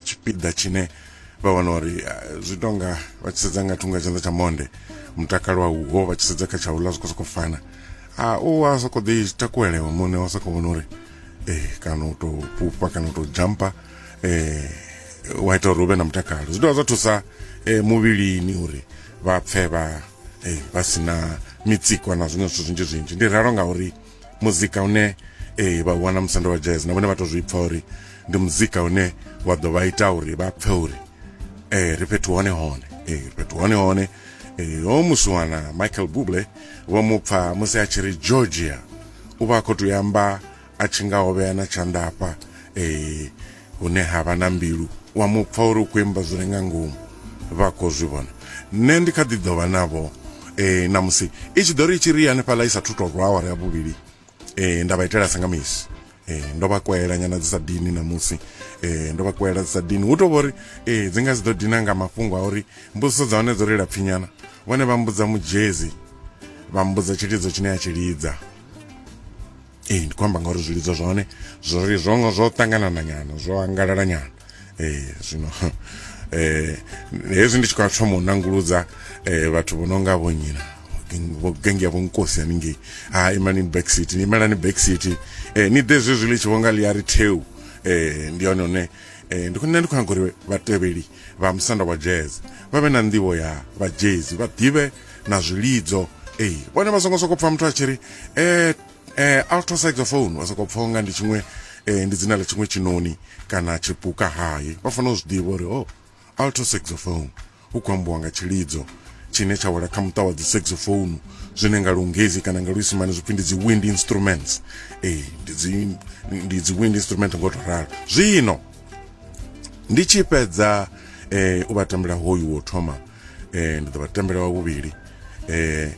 tshipiḓa tshine vha wana uri eh, zwi tonga vha tshi sedza nga thungo ya tshanḓa tsha monde mutakalo a uho vha tshi sedza kha tsha uḽa zwi khou sokou fana a u a sokou ḓi takuelewa muṋe wa sokou vhona uri eh, kana u tou fhufha kana u tou jampa eh, wa ita uri u vhe na mutakalo zwi dovha zwa thusa eh, muvhilini uri vha pfe vha eh, vha si na mitsiko na zwiṅwe zwithu zwinzhi zwinzhi ndi ralo ngauri muzika une ee eh, vha wana musanda wa jazz na vhone vha to zwi pfa uri ndi muzika une wa ḓo vha ita uri vha pfe uri ee eh, ri fhethu hone hone ee eh, ri fhethu hone hone ee ho musi wana michael buble vho mu pfa musi a tshi ri georgia u vha a khou tou yamba a tshi nga hovhea na tshanḓafha ee hune ha vha na mbilu wa mu pfa uri u khou imba zwi re nga ngomu vha khou zwi vhona nṋe ndi kha ḓi ḓo vha navho um na musi i tshi ḓo ri i tshi ri hanefhaḽa i sa thu to rwa awara ya vhuvhili um nda vha itela sa nga misi eh ndo vha kwela nyana dzi sa dini namusi eh ndo vha kwela dzi sa dini hu to vhori eh dzi nga dzi ḓo dina nga mafhungo a uri mbudziso dza hone dzo ri lapfinyana vhone vha mbudza mujezi vha mbudza tshilidzo tshine a tshi lidza ee ndi khou amba ngauri zwilidzo zwa hone zwo ri zwo zwo ṱanganana nyana zwo angalala nyana ee zwino eh hezwi ndi tshi khou thoma u nanguludza eh vhathu vho no nga vho nyina vho gengi vho nkosi haningei ha ah, imani back city ni imelani back city eh ni ḓe zwezwi ḽi tshi vho nga ḽi a ri theu eh ndi hone hone eh ndi khou nṋe ndi khou nyaga uri vhatevheli vha musanda wa jazz vha vhe na nḓivho ya vha jazz vha ḓivhe na zwilidzo ei vhone vha songo sokou pfha muthu a tshi ri eh, eh, alto saxophone vha sokou pfha unga ndi tshiṅwe eh, ndi dzina ḽa tshiṅwe tshinoni kana tshipuka hayi vha fanela u zwi ḓivha uri o oh, alto saxophone hu khou ambiwa nga tshilidzo tshine tsha wela kha muṱa wa dzi saxophone zwine nga lungezi kana nga luisimane zwipfi ndi dzi wind instruments ee ndi dzi wind instrument ngo to ralo zwino ndi tshi fhedza um u vha tambela hoyu wo thoma eh ndi ḓo vha tambela wa vhuvhili eh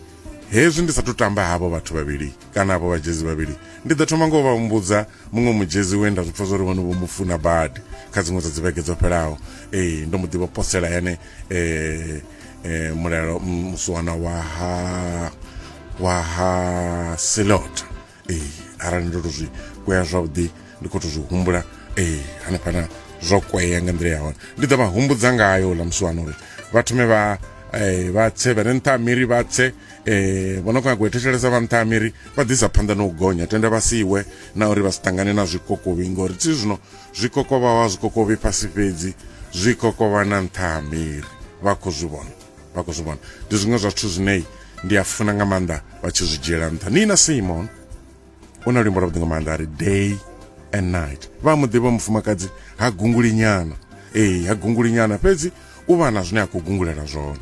hezwi ndi sathu tamba havho vhathu vhavhili kana havho vhajezi vhavhili ndi ḓo thoma ngo vha humbudza muṅwe mujezi we nda zwipfa zwori vhone vho mu funa badi kha dziṅwe dza dzivhege dzo fhelaho ee ndo mu ḓivha posela yane um um mulalo musuwana wa ha wa ha silota ee arali ndo to zwi kwea zwavhuḓi ndi khou to zwi humbula ee hanefhana zwo kwea nga nḓila ya hone ndi ḓo vha humbudza ngayo ḽa musiwana uri vha thome vha eh, vha tse vha re nṱha ha miri vha tse eh, vho no khou nyago u thetshelesa vha nṱha ha miri vha ḓisa phanḓa na u gonya tenda vha siwe na uri vha si ṱangane na zwikokovhi ngori thi zwino zwikokovhawa zwikokovhi fhasi fhedzi zwikokovha na nṱha ha miri vha khou zwi vhona vha khou zwi vhona ndi zwiṅwe zwa zwithu zwine ndi a funa nga maanḓa vha tshi zwi dzhiela nṱha nina simon u na luimbo lwavhuḓi nga maanḓa a ri day and night vha mu ḓivha mufumakadzi ha gunguli nyana ee ha gunguli nyana fhedzi u vha na zwine a khou gungulela zwone